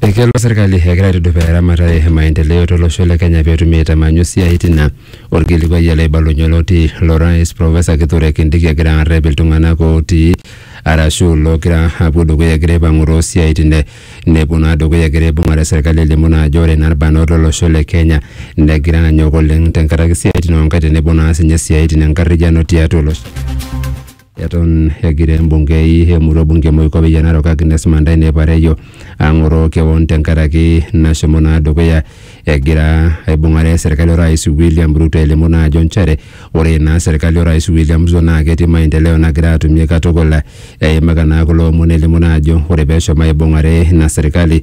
Ekelo serkali egira aitudupaa eramatare e maendeleo tolosho le Kenya petumi aitamanyu siaitin na orkilikuai ele oibalunye oloti lorais Professor Kithure Kindiki egira arrep iltung'anak otii arashu logira apuo dukuya egira aipang'u tosiaitin nepuo naa dukuya egira aibung'are serkali elimu naa ajo ore naa irbanot lolosho le Kenya negira anyok oleng tenkaraki isiaitin onkaik tenebo naa sinye isiaitin enkarriyiano tiatua olosho. Eton egira embungei emurua bunge Moiko peyie narok Agnes Mandai Nepareyo ang'oro kewon tenkaraki nashomo naa dukuya egira aibung'are serkali orais William Ruto elimu naa ajo nchere ore naa serkali orais William Ruto naa ketii maendeleo nagira atumie katukul. Eimaka naa kulo omon elimu naa ajo ore peshomo aibung'are ina serkali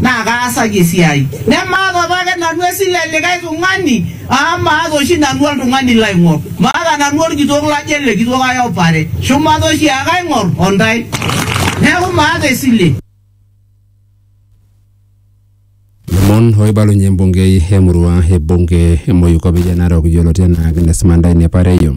naa kaasaki esiai. Nemaata apa ake nanu esile e likae tung'ani, amu maata oshi nanu oltung'ani laing'or. Maata nanu olkitok lajo ele kitok ai opare, shumata oshi ake aing'or o ntae. Neaku, maata esile. Lomon oibalunye embungei emurua e bunge e Moyuko Vijana Narok yioloti anaa Agnes Mandai Nepareyo.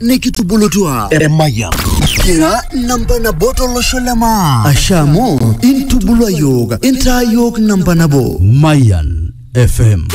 nikitubulutua Emayian. kira namba nabo tolosho le maa asha amu intubulua yiok intaa yiok namba nabo Mayan FM.